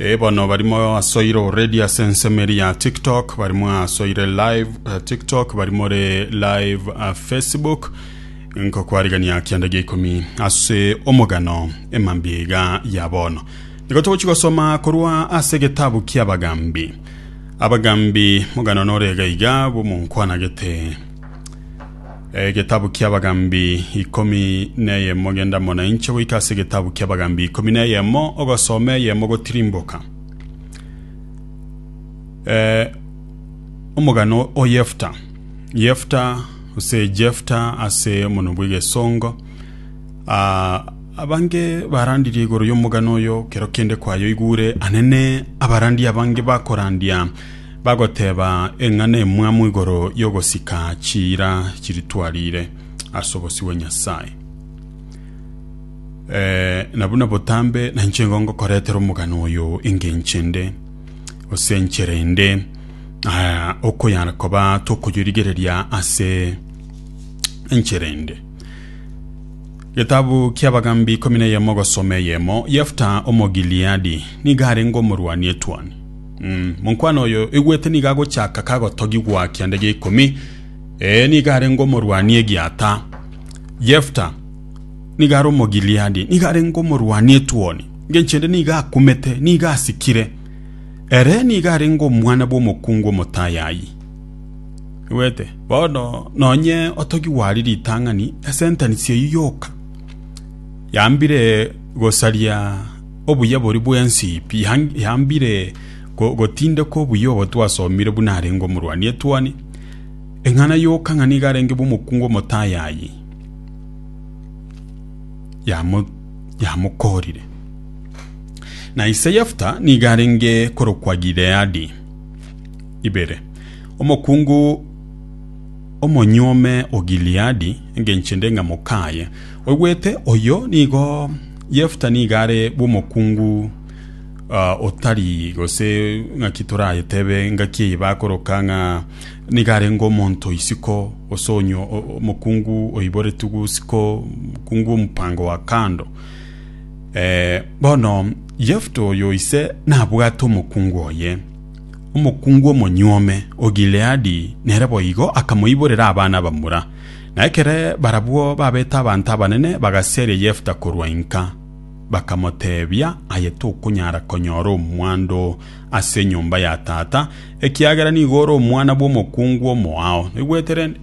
Ee bono barimo asoire already ase ensemo eri ya tiktok barimo asoire live eh, tiktok bari more live eh, facebook nkokwarigania kianda gia ikomi ase omogano emambia iga ya bono nigo togochi gosoma korwa ase getabu kia abagambi abagambi mogano nore iga iga bomonkwanagete Egetabu ki'Abagambi ikomi neyemo genda mona inche goika ase egetabu ki'Abagambi ikomi neyemo ogosoma eyemo gotirimboka. Eh, omogano o Yefta. Yefta ase Jefta ase omonwa bw'egesongo. Ah, abange barandirie igoro y'omogano oyo kero kende kwayoigure anene abarandi abange bakorandia Bagoteba eng'ana emwamo igoro y'ogosika chiira chiritwarire ase obosio bwa Nyasae. Eh, na buna botambe nainche nigo ngokoretera omogano oyo engenche nde, gose enchera ende, ah, okoyara koba tokoyorigereria ase enchera ende. Getabu kia Abagambi ikomi na eyemo ogosoma eyemo, Yefta Omogileadi nigo arenge omorwani etwani. Monkwana oyo igwete nigo agochaka kagotogigwa kianda gia ikomi, ee, nigo arenge omorwani egiata. Yefta nigo are Omogileadi, nigo arenge omorwani etuoni, engencho ende nigo akumete, nigo asikire. Ere nigo arenge omwana bw'omokungu omotayayi. Igwete? Bono nonye otogigwa aria ritang'ani, esentence eyio yoka yambire gosaria Obuyabori bw'ensi yambire gotindeka obuya obo twasomire buna arenge omorwani etuoni, eng'ana yoka ng'a nigo arenge bw'omokungu omotayayi, yamokoorire. Na ise Yefta nigo arenge korokwa Gileadi. Ibere. Omokungu omonyuome o Gileadi, engencho ende ng'a mokaaye, oigwete, oyo nigo. Yefta nigo are bw'omokungu ah, otari gose ng'aki torayetebe ngaki eye bakoroka ng'a nigo arenge omonto isiko gose onyo o- omokungu oiboretwe gusiko omokungu omupango wa kando Eh, bono Yefta oyo ise nabwate omokungu oye omokungu omonyuome o Gileadi nere boigo akamoiborera abana bamura Na ekere barabwo babete abanto abanene bagasieria Yefta korwa inka, bakamoteebia, Aye tokonyara konyora omwando ase enyomba ya tata, ekiagera nigo ore omwana bw'omokungu omoao. Naigwete rende?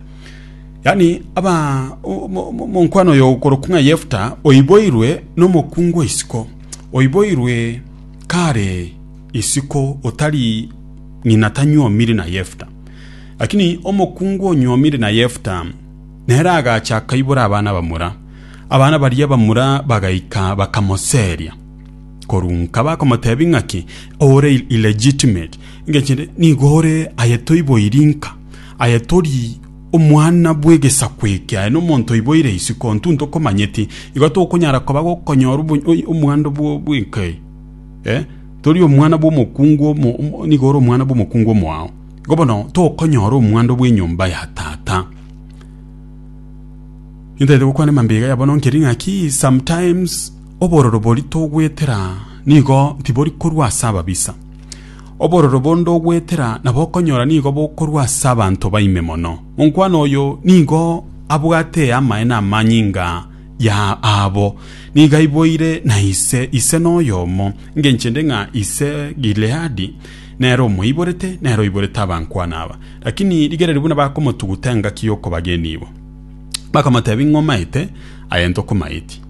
Yaani aba o- mo- mo- monkwana oyo okorokwa ng'a Yefta oiboirwe n'omokungu o isiko, oiboirwe kare isiko otari ng'ina tanyuomiri na Yefta. Lakini omokungu onyuomire na Yefta nere agacha akaibora abana bamura. Abana baria bamura bagaika bakamoseria korwa nka bakomotebia ng'aki ore illegitimate ngechende nigo ore aye toiboiri nka aye tori omwana bw'egesaku eke aye nomonto oiboire isiko ntu ntokomanyeti igo tokonyara koba gokonyora omwando bw'enka eye eh? tori omwana bw'omokungu nigo ore omwana bw'omokungu omoao Igo bono tokonyora omwando bw'enyomba ya Tata. Nintaete gokwana mambega ya bono nkeri ng'aki sometimes obororo bori togwetera nigo tibori korwa ase ababisa. Obororo bonde ogwetera nabo okonyora nigo bokorwa ase abanto baime mono. Monkwana oyo nigo abwate amaene amanyinga ya aabo. Nigo aiboire na ise, ise noyomo, engenchende ng'a ise Gileadi. Nere omoiborete, nere oiborete abankwana aba. Lakini rigereria buna bakomotuguta engaki y'okobagenia ibo. Bakamotebia, Ing'o omaete, aye ntokomaeti.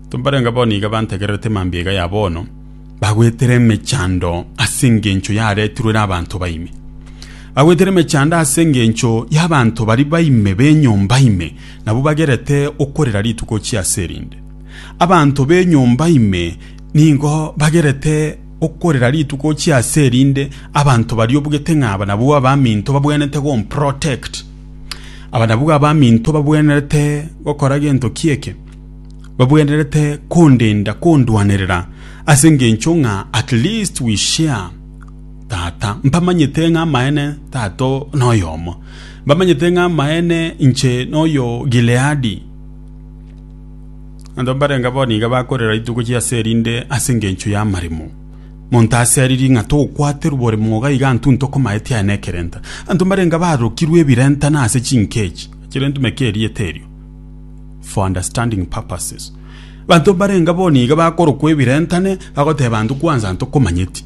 Timbarenge bono iga bantegererete mambia iga ya bono, bagwetera emechando ase engencho yaretirwe ere abanto baime. Bagwetera emechando ase engencho y'abanto bari baime b'enyomba ime, nabwo bagerete okorera rituko chia ase erinde. Abanto b'enyomba ime Nigo bagerete okorera rituko ochia ase erinde abanto baria obugete ng'a abanabwo abaminto babwenerete gomprotect. Abanabwo abaminto babwenerete gokora gento ki eke? Babwenerete kondenda, kondwanerera ase engencho ng'a at least we share tata. Mbamanyete ng'a amaene tata noyomo. Mbamanyete ng'a amaene inche noyo Gileadi. Abanto mbarenge abao nigo bakorera rituko chi'ase erinde ase engencho y'amaremo. Monto aseririe ng'a togokwaterwa bore mwoga iga intwe intwe komaeti aye nekerenta. Abanto mbarenge barokirwe ebirenta na ase chinkechi chire entumeke erieta erio for understanding purposes. Abanto mbarenge abao nigo bakorokwa ebirenta ne bagoteba intwe kwanza intwe komanyeti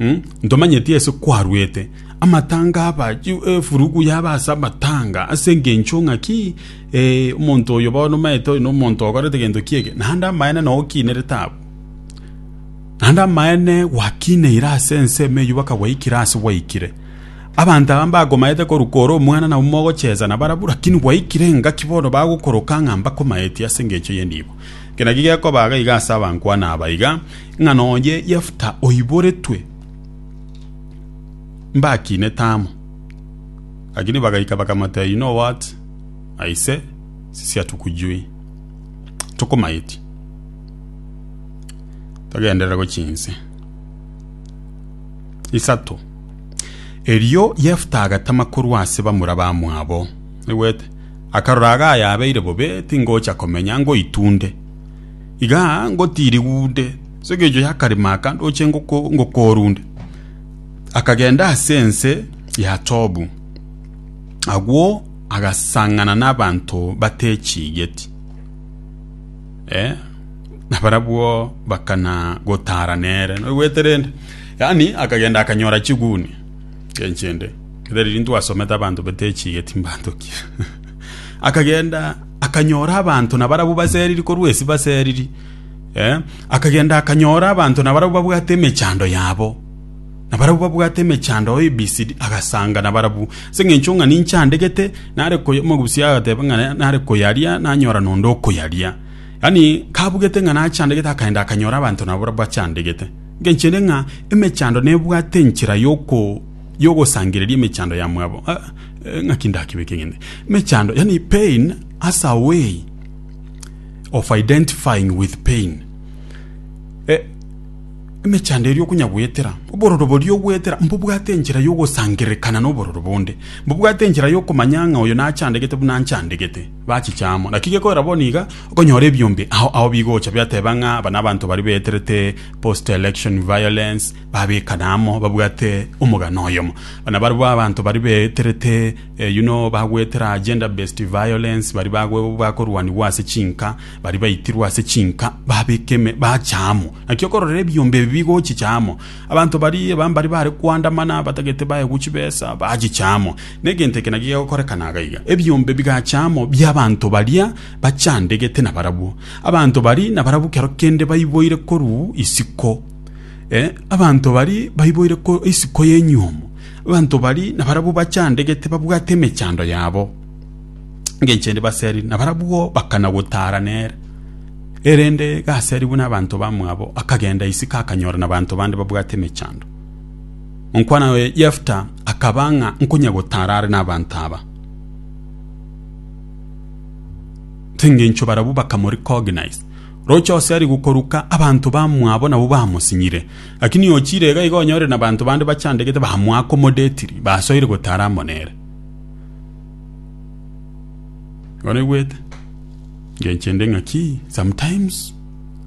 mh ntomanyeti ase kwarwete amatanga aba efurugu yaba ase amatanga ase engencho ng'a ki? Ee, omonto oyo bono omaete oyo nomonto okorete gento ki'ege, naende amaene nao okiinerete abwo. Naende amaene gwakiineire ase ensemo eyio baka gwaikire ase gwaikire. Abanto aba mbakomaete korwa kore omwana nabwo mogochesa nabarabwo, rakini gwaikire engaki bono bagokoroka ng'a mbakomaeti ase engencho y'enibo. Eke nakio gekobaa gaiga ase abankwana aba iga, ng'a nonya Yefta oiboretwe mbakinete amo. Rakini bagaika bakamotebia, You know what? a ise sisia tukujui tokomaeti togenderere gochia inse isato. Erio Yefta agatama korwa ase bamura bamwabo, naigwete, akarora iga ayabeire bobe tingocha komenya, ngoitunde iga ngotirigunde ase engencho y'akarimo aka ndoche ngokorunde. Akagenda ase ense ya Tobu. Agwo agasang'ana n'abanto batechigeti, eh, na barabwo bakana gotara nere. Noigwete rende? Yaani akagenda akanyora chiguni chenchende. Kere riria twasomete abanto batechigeti mbanto ki? akagenda akanyora abanto na barabwo baseriri korwa esi baseriri. Eh, akagenda akanyora abanto na barabwo babwate emechando yabo. na barabwo babwate emechando yao ebisidi, agasanga nabarabwo. Ase engencho ng'a ninche andegete, nare koy omogusia agateba ng'a nare koyaria, nanyora nonde okoyaria. Yaani kabugete ng'a nache andegete akaenda akanyora abanto nabarabwo ache andegete. Engencho ere ng'a emechando nebwate enchera yoko yogosangereria emechando ya mwabo. Ah, ng'aki ndakebeke ng'ende. Emechando, yaani pain as a way of identifying with pain. Eh, Emechando eria okonyagwetera, obororo boria ogwetera, mbobwate enchera y'ogosangererekana nobororo bonde, mbobwate enchera y'okomanya ng'a oyo nachandegete buna nchandegete, bachiche amo. Naki gekorera bono iga, okonyora ebiombe ao ao bigocha biateba ng'a aba nabanto baria baeterete post-election violence, babekana amo, babwate omogano oyomo. Buna barabwo abanto baria baeterete you know bagwetera gender-based violence, baria bakorwanigwa ase chinka, Baria baitirwe ase chinka babeka ime bacha amo. Naki okorora ebiombe ebi bigochicha amo, abanto baria bambari baare koandamana abatagete baegwe chibesa bachicha amo. Negento eke naki gegokorekana iga iga, ebiombe bigacha amo bi'abanto baria bachandegete nabarabwo. Abanto baria nabarabwo kero kende baiboire korwa isiko, ee, abanto baria baiboire korwa isiko y'enyuomo. Abanto baria nabarabwo bachandegete babwate emechando yabo. engencho ende baseri na barabwo bakana gotara nere erende gaseri buna abanto bamwabo akagenda isiko akanyora na abanto bande babwate emechando onkwana oye yefta akaba ng'a nkonya gotara are n'abanto aba engencho barabwo bakamoricognize roche ose ari gokoruka abanto bamwabo nabo bamosinyire lakini ochire iga iga onyore na abanto bande bachandegete bamwaka omodetiri basoire gotara amo nere oregwete ngenchende ng'aki sometimes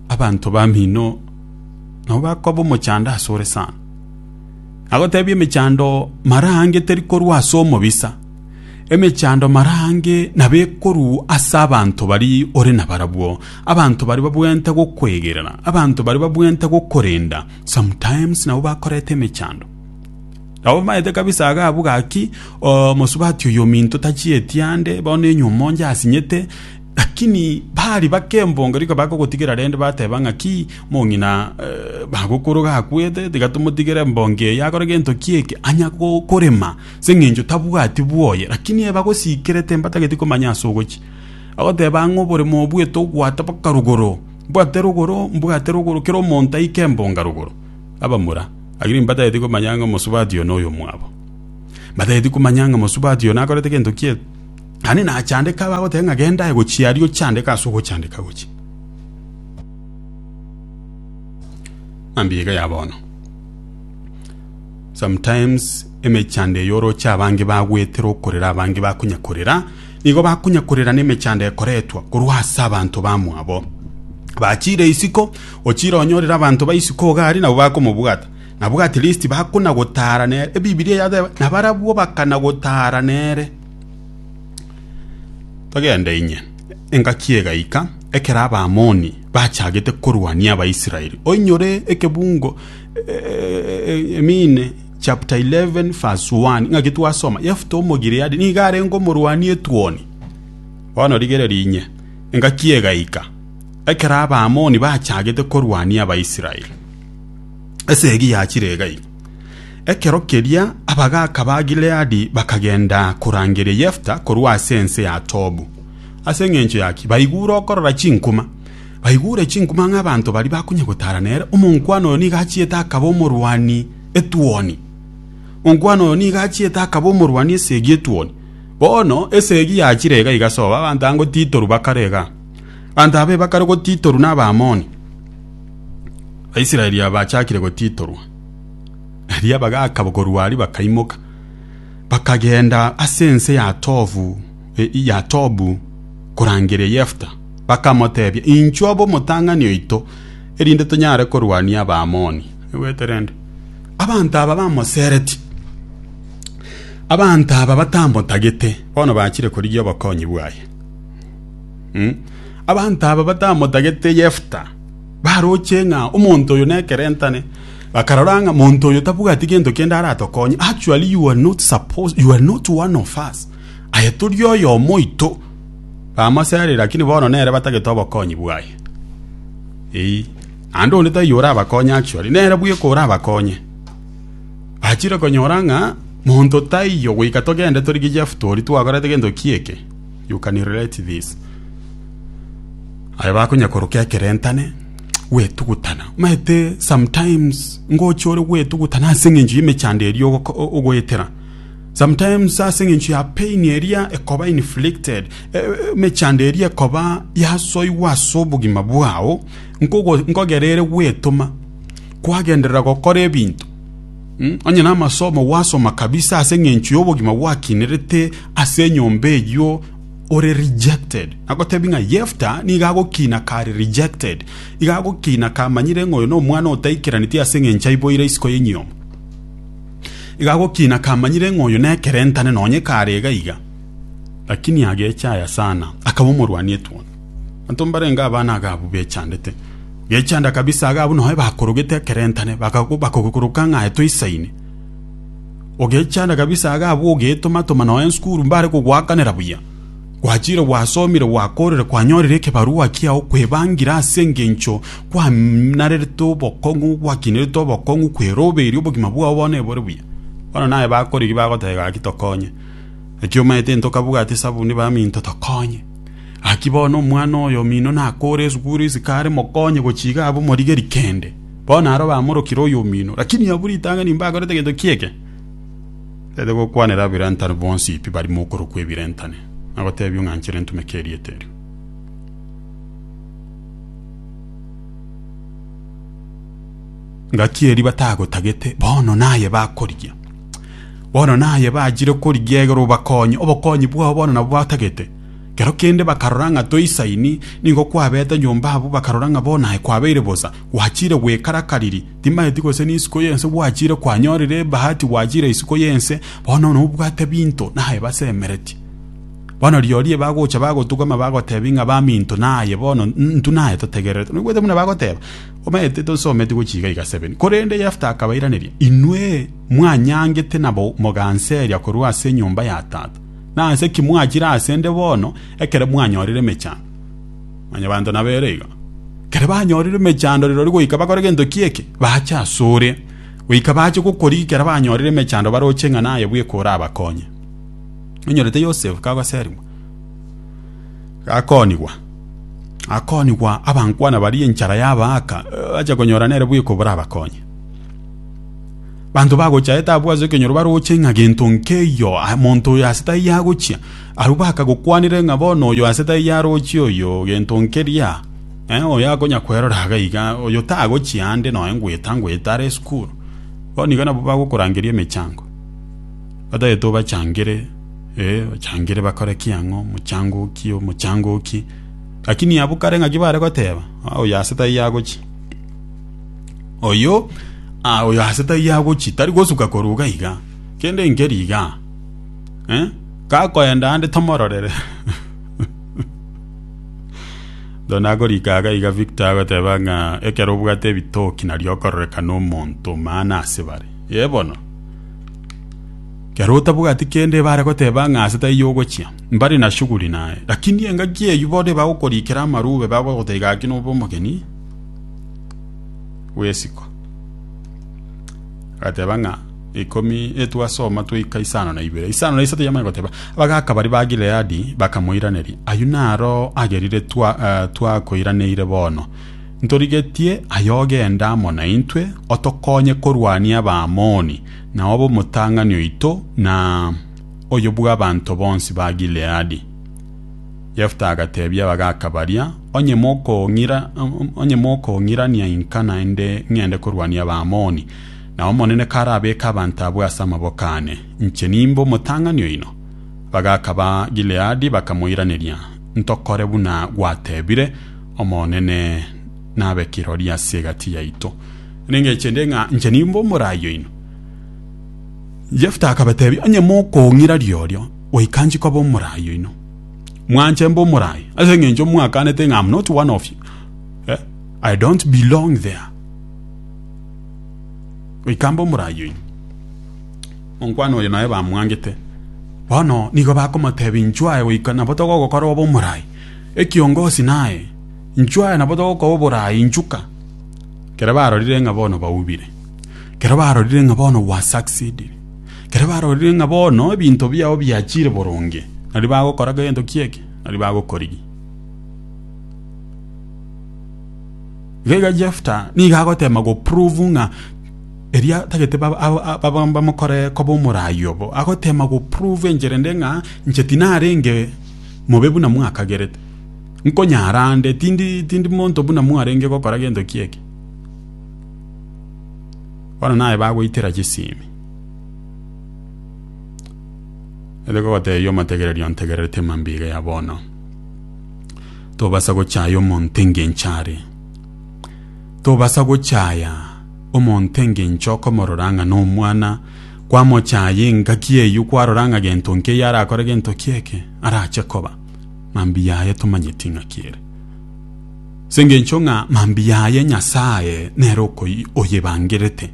abanto bamino nabo bakoba omochando ase ore sana agotebia emechando mara ange teri korwa ase omobisa emechando mara ange nabo ekorwa ase abanto bari ore nabarabwo abanto bari babwenerete gokwegerera abanto bari babwenerete gokorenda sometimes nabo bakoreta emechando. Nabo bamaete kabisa iga abwo gaki omosubati oyo ominto tachietie ande, bono enyumo onde asinyete. Lakini bari bake embongo riko bakogotigera rende bateba ng'aki, mong'ina bagokoro gakwete, tiga tomotigere embongo eye akore gento ki eke, anya korema, ase eng'encho tabwati bwoye. Lakini eba gosikire timbatageti komanya ase ogochia. Bagoteba ang'e oboremo obwete ogwata mpaka rogoro, mbwate rogoro, mbwate rogoro, kera omonto aike embonga rogoro. abamura, lakini mbatageti komanya ng'a omosubati oyo noyomwabo. Mbatageti komanya ng'a omosubati oyo nakorete gento kie, naende nachandeka abagoteba ng'a genda aye gochia aria ochandeke ase ogochandeka gochia. Mambia iga ya bono. Sometimes emechando eye oroche abange bagwetera okorera abange bakonya korera, nigo bakonya korera na emechando ekoretwa korwa ase abanto bamwabo. Bachire isiko. Ochire onyorire abanto ba isiko iga aria nabwo bakomobwata. Nabwo at least bakona-gotaara nere. Ebibilia yateba, nabarabwo bakana-gotaara nere. Togende inye. Engaki egaika, ekero Abaamoni bachagete korwania Abaisraeli. Oinyore ekebungo eh, I mean chapter 11 verse 1, ng'aki twasoma, Yefta Omogileadi nigo arenge omorwani etuoni. Bono rigereria inye, engaki egaika, Ekero Abaamoni bachagete korwania Abaisraeli, esegi yachire iga-iga. Ekero keria abagaaka ba Gileadi bakagenda korangeria Yefta korwa ase ense ya Tobu. Ase engencho yaki? Baigure okorora chinkuma. Baigure chinkuma ng'a abanto baria bakonya gotara nere, omonkwana oyo nigo achiete akaba omorwani etuoni. Omonkwana oyo nigo achiete akaba omorwani esegi etuoni. Bono esegi yachire iga-iga sobo, abanto ango titorwa bakarega. Abanto aba ebakare gotitorwa n'Abaamoni, Abaisraeli aba bachakire gotitorwa. Erio abagaaka korwa aria bakaimoka, bakagenda ase ense ya Tobu, ya Tobu korangeria Yefta, bakamoteebia, Inchuo abe omotang'ani oito, erinde tonyare korwania Abaamoni. Naigwete rende? Abanto aba bamosereti, abanto aba batamotagete, bono bachire korigia obokonyi bwaye. Mm. Abanto aba batamotagete Yefta baroche ng'a omonto oyo nekerentane bakarora ng'a monto oyo tabwati gento kende aratokonye actually you are not supposed you are not one of us aye tori oyo omoito bamosarire lakini bono nere batagete obokonyi bwaye Eyi. Naende onde taiyo orabakonye actually nere bweka orabakonye achire konyora ng'a monto taiyo goika togende torigie Jefta oria twakorete gento kieke You can relate this. Aye bakonya korokia ekerentane gwetugutana maete sometimes ngocha ore gwetugutana ase eng'encho y'emechando eria ogoko- o- ogoetera sometimes ase eng'encho ya pain eria ekoba inflicted e- e- emechando eria ekoba yasoigwa ase obogima bwao nkogo- nkogerere gwetoma kwagenderera gokora ebinto Mm, onye namasomo gwasoma kabisa ase engencho y'obogima gwakinerete ase enyomba eyio ore rejected nagotebi ng'a yefta niga agokina kare rejected iga agokina kamanyire ng'a oyo na omwana otaikeraneti ase engencho aiboire isiko y'enyiomo iga agokina kamanyire ng'a oyo nekerentane nonye kare iga iga lakini agecha aya sana akaba omorwani etuoni Abanto mbarenge aba naga abwo bechandete, gechanda kabisa iga abwo nonye bakorogete ekerentane bakogokoroka ng'a aye toisaine. Ogechanda kabisa iga abwo ogeetoma-toma nonye nsukuru mbare kogoakanera buya. Gwachire gwasomire gwakorire kwanyorire ekebarua kiao kwebangira ase engencho kwanarerete obokong'u gwakinerete obokong'u kweroberia obogima bwao bono ebore buya. Bono naye bakorigia bagoteba gaki tokonye. Naki omaete intokabugate esabuni baminto tokonye. Gaki bono omwana oye omino nakoore esuguru isiko are mokonye gochiga abe omorigeri kende. Bono aro bamorokire oyo omino, lakini abwo ritang'ani nimbakorete gento ki'eke. Tete gokwanera abirentane bonsi pi barimo okorokwa ebirentane, na gotebia ong'anchere ntumeke erieta erio. Gaki erio batagotagete, bono naye bakorigia. Bono naye bachire korigia egere obakonye, obokonyi bwao bono nabwo batagete. Kero kende bakarora ng'a toisaini, nigo kwabete nyomba abwo bakarora ng'a bono aye kwabeire bosa, gwachire goikara kariri, timaeti gose n'isiko y'ense gwachire kwanyorire ebahati gwachire isiko y'ense, bono nobwate binto naye basemeretie. Bono rirorio ebagocha bagotugama bagotebi ng'a baminto naye bono intwe naye totegererete. Noigwete buna bagoteba? Omanyete tosometi gochia iga iga 7 Korende Yefta akabairaneria, Inwe mwanyangete na moganseria korwa ase enyomba ya tata, nase ki mwachire ase 'nde bono ekero mwanyorire emechando? Mwanyabanto nabo ere igo. Ekero banyorire emechando rirorio goika bakore gento ki eke? Bache asore, goika bache gokoria ekero banyorire emechando baroche ng'a naye bweka orabakonye. Onyorete Yosefu kagoserigwa. Gakoonigwa, gakoonigwa abankwana baria enchara yabaaka, bache konyora nere bweka oborabakonye. Banto bagochaete abwo ase ekenyoro baroche ng'a gento nkeiyo monto oyo ase taiyo agochia, abwo bakagokwanire ng'a bono oyo ase taiyo arochie oyo gento nkeria, oyo akonya kwerora iga iga, oyo tagochia ande noe ngweta ngweta are esukuru. Bono igo nabwo bagokorangeria emechango. Bataete obachangere, ee, bachangere bakore ki ang'o, omochangoki, omochangoki. Lakini abwo kare ng'aki bare goteba, ah, oyo ase taiyo agochi. Oyo, ah, oyo ase taiyo agochi, tari gosuka koruga iga. Kende nkeri iga. Eh? Kakoenda ande tomororere. Dona agorika aga iga Victor agoteba ng'a ekero obwate ebitoki nario okororekana omonto maana ase bare. Ye bono. Ekero otabwati kende ebare goteba ng'a ase taiyo ogochia, mbare na shughuli naye. Lakini engaki eyio bono ebagokorikera amarube, bagogoteba gaki nobe omogeni bw'esiko. Agateba ng'a ikomi etwasoma twaika isano na ibere. Isano na isato yamanya goteba, abagaka baria ba Gileadi bakamoiraneria, Ayio naro agerire twakoiraneire bono, Ntorigetie aye ogende amo naintwe otokonye korwania Abaamoni, na obe omotang'ani oito na oyo bw'abanto bonsi ba Gileadi. Yefta agateebia abagaaka baria, Onye mokong'irania inka naende ng'ende korwania Abaamoni, na Omonene karabeeke abanto abwo ase amaboko aane, inche nimbe omotang'ani oino. Abagaaka ba Gileadi bakamoiraneria, Ntokore buna gwateebire, Omonene nabe kirori ase egati yaito, nengeche nde ng'a inche nimbe omorai oino. Jefta akabatebia, Onye mokong'ira riorio, goika nchie koba omorai oino. Mwanche mbe omorai, ase engencho mwaakanete ng'a I'm not one of you, eh, I don't belong there. Goika mbe omorai oino. Omonkwana oyo nonye bamwangete, bono nigo bakomotebia, Inchuo aye goika nabo togogokora obe omorai. Ekiongosi naye, Inchuo aya nabo togokoa oboraai inchuka. Kero barorire ng'a bono baubire. Kero barorire ng'a bono gwasucceedire. Kero barorire ng'a bono ebinto biao biachire boronge. Nari bagokora gento ki'eke, nari bagokorigia. Iga iga Jefta nigo agoteema goprove ng'a eria tagete bamokore koba omoraai obo. Agoteema goprove enchera ende ng'a inche tinarenge mobe buna mwakagerete. Nkonyara ande, tindi, tindi monto buna mwarenge gokora gento kieke. Bono naye bagoitera chisimi. Ere gogotebia omotegereria ontegererete emambiga ya bono. Tobasa gochaya omonto engencho are. Tobasa gochaya omonto engencho okomorora ng'a nomwana kwamochaayia engaki eyio kwarora ng'a gento nkeiyo arakore gento ki'eke arache koba, mambia aye tomanyeti ng'a ki'ere. As'engencho ng'a mambia aye Nyasae nere oyebangerete.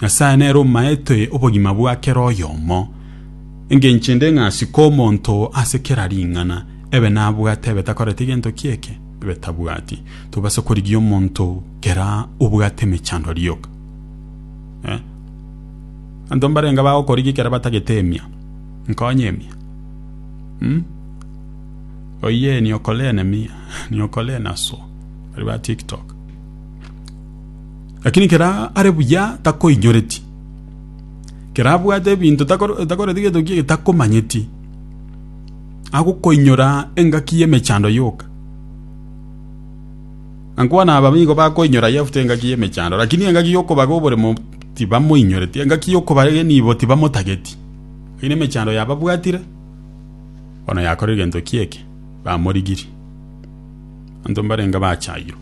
Nyasae nere omaete obogima bwa kera oyomo. Engencho ende ng'a asike omonto ase kera ring'ana, ebe nabwate ebe takoreti gento ki'eke, ebe tabwati. Tobasa korigia omonto kera obwate emechandwa rioka. Abanto mbarenge bagokorigia ekero batagete emia, nkonye emia. Oyee niokore enemia, niokore enaso, baria ba tiktok. Rakini ekero are buya takoinyoreti, ekero abwate ebinto takoreti gento kiaye takomanyeti, agokoinyora engaki y'emechando yoka. Nankwana aba nigo bakoinyora Yefta engaki y'emechando, lakini engaki y'okobaga oboremo tibamoinyoreti, engaki y'okobaga enibo tibamotageti. Lakini emechando yababwatire, bono yakorire gento ki'eke, bamorigirie. Abanto mbarenge bachayirwe,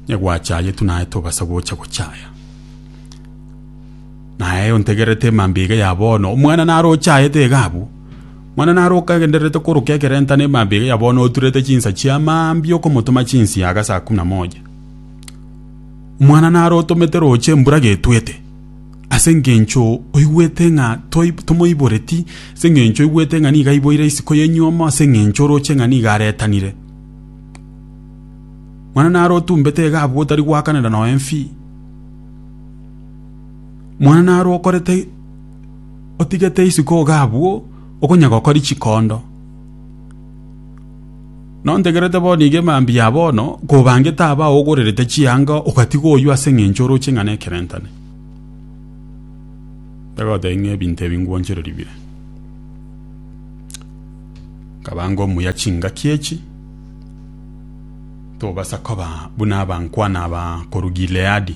onye gwachayetwe naye tobasa gocha gochaya. Naye ontegererete emambia iga ya bono, omwana naro ochayete iga abwo, Mwana naroke agendererete koroka ekerenta na emambia eye ya bono oturerete chinsa chia mambia okomotoma chinsia age saa kumi na moja. Omwana narotomete roche embura getwete, ase engencho oigwete ng'a tomoiboreti, ase engencho oigwete ng'a nigo aiboire isiko ya enyuomo, ase engencho oroche ng'a nigo aretanire. Mwana narotumbete iga abwo otari goakanera noe mfi. Mwana narokorete otigete isiko iga abwo okonya gokori chikondo nontegerete bono iga emambia ya bono kobangete aba ogorerete chianga ogatiga oyio ase eng'encho oroche ng'a nekerentane tagotebia ng'a ebinto ebi ngwanchereri bire nkaba ngomuya chingaki echi tobasa koba buna abankwana aba korwa Gileadi.